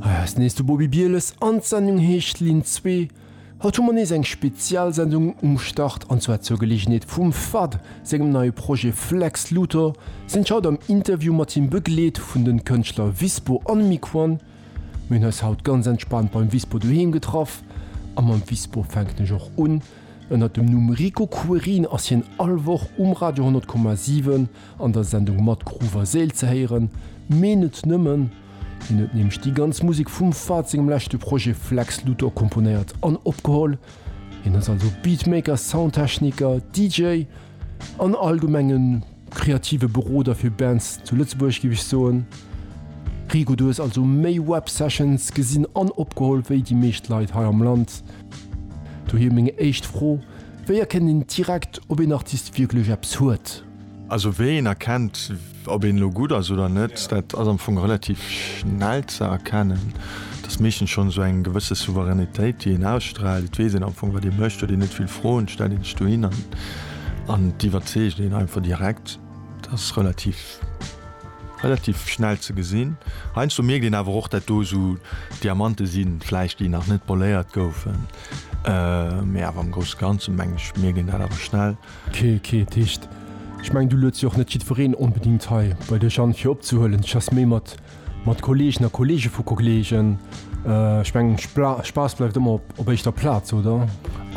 Hei ass nees de Bobi Bieles an d'Sendung heescht Linn 2. Haut hu mer nees eng Spezialsendung um Start an zwar zur Geleegenheet vum fad sengem neie Projet Flex Luthor sinn ech haut am Interview mat him begleet vun den Kënschtler Vispo an Miquon. Mir hunn eis haut ganz entspaant beim Vispo doheem getraff a mam Vispo fänken ech och un. Ënnert dem Numm Rico Querin ass hien all Woch um Radio 100,7 An der Sendung Mat Gruff a Séil ze héieren, mee net nëmmen. Hien huet nämlech déi ganz Musek vum Fahd sengem leschte Projet Flex Luthor komponéiert an opgeholl. Hien ass also Beatmaker, Soundtechniker, DJ an allgemeng e kreative Beroder fir Bands zu Lëtzebuerg, géif ech soen. Rico, du hues also méi Web Sessions gesinn an opgeholl wéi déi meescht Leit hei am Land. Dohier meng éischt Fro, Wéi erkennt een direkt, ob een Artist wierklech eppes huet? Also wéi een erkennt, ob een elo gutt ass oder net, dat ass am Fong relativ schnell ze erkennen. Et ass meeschtens schonn esou eng gewësse Souveränitéit, déi een ausstraalt. Et weess een am Fong, wat ee mécht, huet een net vill Froen, stellt een sech dohin an an et iwwerzeegt een einfach direkt. Dat ass relativ, relativ schnell ze gesinn. Heiansdo mierkt een awer och, dat do esou Diamante sinn, vläicht déi nach net poléiert goufen, mä awer am Grousse Ganze meng ech, mierkt een dat awer schnell. Kee, kee Ticht. Ech mengen, du lueds jo och net jiddwereen onbedingt hei bei dech an, fir opzehuelen. Ech has méi mat, mat Kolleegen a Kolleege vu Kollegen. Ech mengen, Spaass bleift ëmmer op éischter Plaz, oder?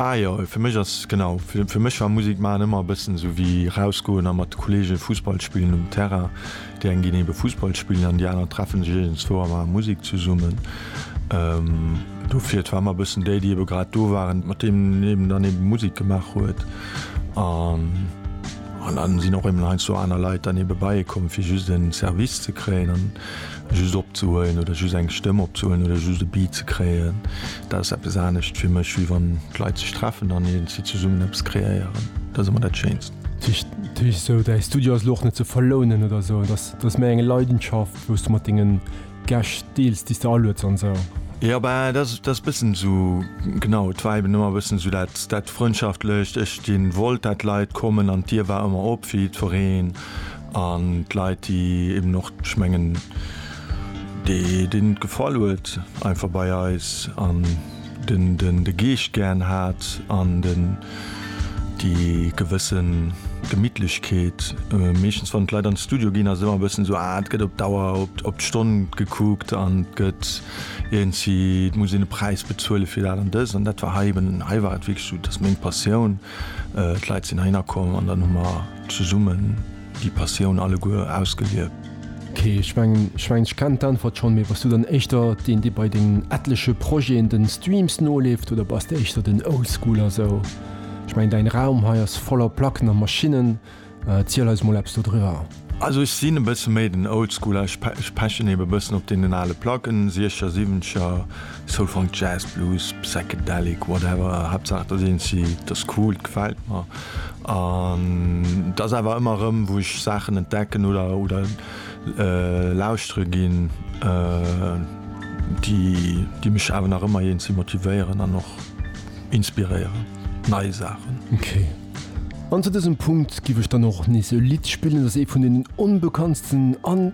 Ah jo, fir mech ass, genau, fir mech war Musek maachen ëmmer e bëssen esou wéi rausgoen a mat Kolleege Fussball spillen um Terrain. Déi eng ginn ebe Fussball spillen an déi aner treffe sech iergendzwou a maache Musek zesummen. Dofir, et war ëmmer e bëssen déi, déi ebe grad do waren, mat deenen een dann ebe Musek gemaach huet. An dann sinn och ebe heiansdo aner Leit dann ebe bei ee komm, fir just en Service ze kréien an just opzehuelen oder just eng Stëmm opzehuelen oder just e Beat ze kréien. Dat ass eppes anescht fir mech, wéi wann d'Leit sech treffen an iergendwéi zesummen eppes kreéieren. Dat ass ëmmer dat Schéinst. Tisch sou däi Studio ass lo och net ze verlounen oder sou, et ass, et ass méi eng Leidenschaft wou s du mat dengen Gäscht deels, déi s de alueds an sou. Jo bah et ass, et ass bëssen sou, genau, et war eben ëmmer bëssen sou dat, dat Frëndschaftlëcht, ech deen wollt dat d'Leit kommen an d'Dier war ëmmer op fir jiddwereen an d'Leit déi eben och, ech mengen déi, deenen et gefall huet einfach bei eis an. Den den de Geescht gären hat an den déi gewësse Gemittlechkeet. Meeschtens wann d'Leit an de Studio ginn ass et ëmmer e bëssen esou, ah et gëtt op d'Auer, op d'Stonn gekuckt an et gëtt iergendwéi, et muss een e Präis bezuele fir dat an dëst. An dat war hei eben, hei war et wierklech esou, et ass meng Passioun, d'Leit sinn heihinner komm an dann hu mer zesummen. Déi Passioun alleguer ausgelieft. Ok, ech mengen ech mengen ech kennen d'Äntwert schonn, mee bass du dann éischter deen dee bei dengen etleche Projeten den Streams noleeft oder bass de éischter den Oldschooler esou? Ech mengen däin Raum hei ass voller Placken a Maschinnen, erziel eis mol eppes dodriwwer. Also ech sinn e bësse méi den Oldschooler, ech pechen eben e bëssen op deenen ale Placken, Siecher, Siwwencher, Soul, Funk, Jazz, Blues, Psychedelic, whatever, Haaptsaach et ass eenzi, et ass cool, et gefält mer. An et ass awer ëmmer erëm, wou ech Saachen entdecken oder oder lauschtere ginn, déi déi mech awer nach ëmmer eenzi motivéieren an och inspiréieren, nei Saachen. Ok. An zu dësem Punkt giff ech dann och nees e Lidd spillen. Dat ass ee vun deenen onbekanntsten an.